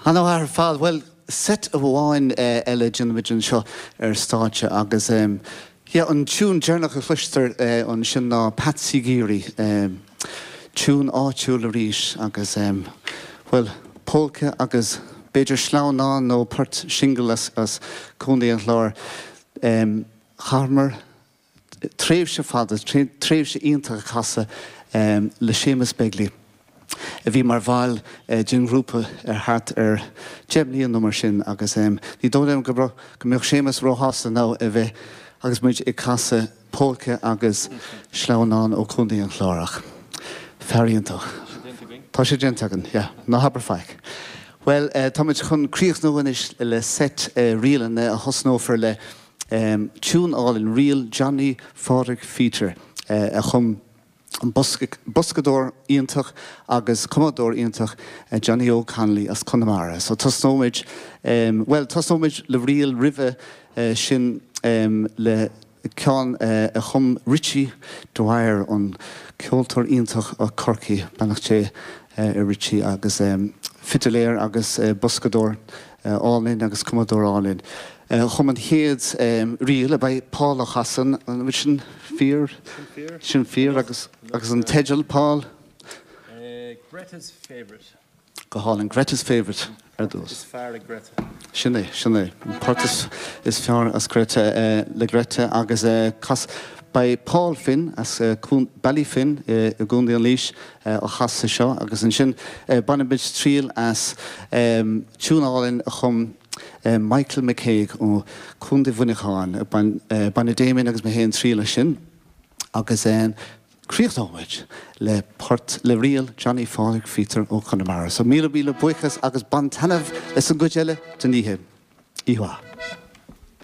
Ar fheabhas ar fad. Bhuel, seit amháin eile déanfaimid anseo ar stáitse agus, yeah, an tiún deireanach a chloisfear ansin ná Patsy Geary. Tiúin áitiúil arís agus, bhuel, pólca agus b'fhéidir sleamhnán nó poirt singil as Contae an Chláir. Chaitheamar tréimhse fada, tréimhse iontach ag casadh le Séamus Begley a bhí mar bhall den ghrúpa ar thart ar deich mbliana nó mar sin agus ní dóigh liom go mbeadh Séamus róshásta ná beadh agus muid ag casadh Pólca agus sleamhnán ó Chontae an Chláir ach fear iontach. Tá sé déanta againn. Ná habair faic. Bhuel, táimid chun críochnú anois le seit ríleanna a thosnófar le tiún álainn, ríl Johnny Phádraic Pheadair a chum. boscadóir iontach agus cumadóir iontach Johnny Óg Connolly as Conamara. So tosnóimid, bhuel tosnóimid le ríl roimhe sin le ceann a chum Richie Dwyer, an ceoltóir iontach ó Chorcaigh, beannacht Dé ar Richie agus fidiléir agus boscadóir, álainn agus cumadóir álainn. Chum an chéad ríl a bheidh Paul a chasadh an bhfuil sin fíor? Sin fíor agus an teideal 'Paul'? Greta's Favourite. Go hálainn. Greta's Favourite ar dtús. Is fearr ag Greta. Sin é, sin é. An port is is fearr as Greta le Greta agus cas. Beidh Paul Finn as Ballyfin i gContae Laoise ag casadh seo agus ansin bainfimid triail as tiún álainn a chum Michael McCague ó Chontae Mhuineacháin. Bainfidh Damien agus mé féin triail as sin agus críochnóimid le port le ríl Johnny Phádraic Pheadair ó Chonamara. So míle míle buíochas agus bain taitneamh as an gcuid eile den oíche. Iahua!